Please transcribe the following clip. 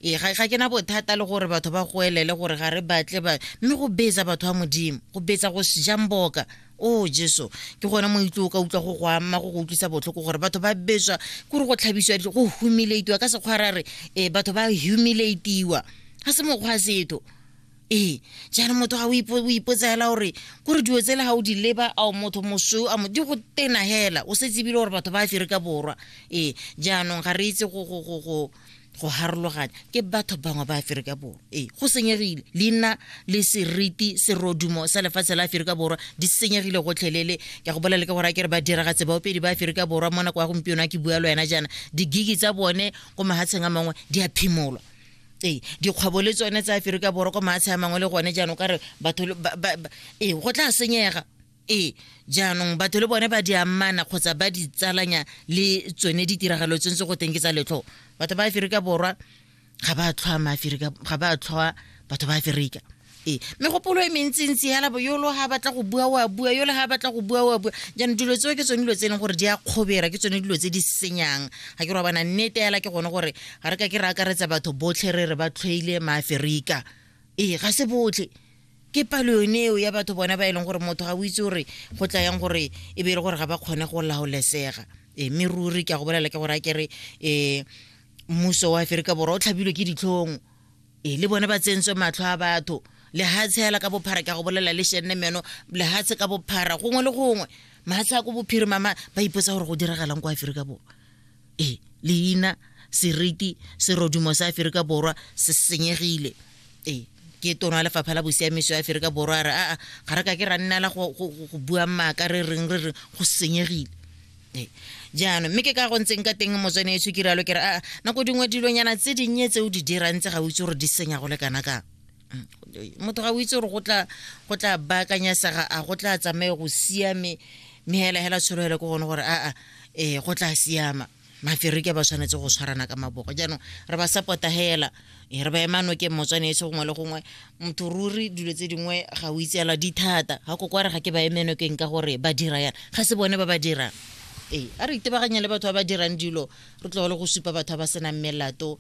ee ga ga ke na bothata le gore batho ba goelele gore ga re batle ba mme go betsa batho ba modimo go betsa go jamboka o oh, jesu ke gone moitlo o ka utlwa go go amma go go utlwisa botlhoko gore batho ba betswa ke re go tlhabisiwa dijo go humilatiwa ka sekgwara re ee batho ba humilatiwa ga se mokgwa setho ee jaanong motho ga o ipotsela gore kore dilo tsele ga o di leba ao motho mosweu a di go tena fela o setse ebile gore batho ba aferika borwa ee jaanong ga re itse go go harologanya ke batho bangwe ba aferika borwa ee go senyegile leina le seriti serodumo sa lefatshe la aferika borwa di senyegile gotlhelele ke go bolela ka gore a ke re ba diragatse baopedi ba aferika borwa mo nako ya gompieno a ke bua le wena jaana digigi tsa bone ko mahatsheng a mangwe di a phimolwa ee dikgwebo le tsone tsa aferika borwa ko mahatshe a mangwe le gone jaanong ka re batho ee go tla senyega ee jaanong batho le bone ba di amana kgotsa ba di tsalanya le tsone ditiragalo tse ntse go teng ke tsa letlho batho ba aferika borwa ga ba tlhoa maaferika ga ba tlhoa batho ba aferika ee megopolo e mentsintsi yala bo yolo ga batla go bua wa bua yole ga batla go bua wa bua jaanong dilo tseo ke tsone dilo tse e leng gore di a kgobera ke tsone dilo tse di senyang ga ke robana nnete yala ke gone gore ga re ka ke re akaretsa batho botlhe re re ba tlhoile maaferika ee ga se botlhe ke palo yone eo ya batho bona ba e leng gore motho ga o itse gore go tla yang gore e be e le gore ga ba kgone go laolesega e mme ruri ke a go bolela ke gore a kere um mmuso wa aferika borwa o tlhabilwe ke ditlhong e le bone ba tsentswe matlho a batho lehatshe hela ka bophara ke a go bolela le shenne meno lehatshe ka bophara gongwe le gongwe mahatshe a ko bophirima ba ipotsa gore go diragalang kwa aferika borwa e leina seriti serodumo sa aferika borwa se senyegile e ke tono ya lefapha la bosiamiso ya aferika borwa a re aa ga re ka ke ra nnela go bua maaka re reng re reng go senyegile e jaanong mme ke ka go ntseng ka teng motswane etsho ke rialo ke re aa nako dingwe dilonyana tse dinnye tse o di dirang tse ga o itse gore di senya go le kana kang motho ga o itse gore go tla go tla baakanyasega a go tla tsamaye go siame mme hela hela tshologelo ke gone gore aa um go tla siama maferike ba tshwanetse go tshwarana ka maboko jaanong re ba support hela eh, re ba emano ke motswane etse gongwe le gongwe motho ruri dilo tse dingwe ga o itseela di thata ga ko kware ga ke ba emeno keng ka gore ba dira yana ga se bone ba ba dirang ee a re itebaganye le batho ba ba dirang dilo re tlogole go supa batho ba ba senang melato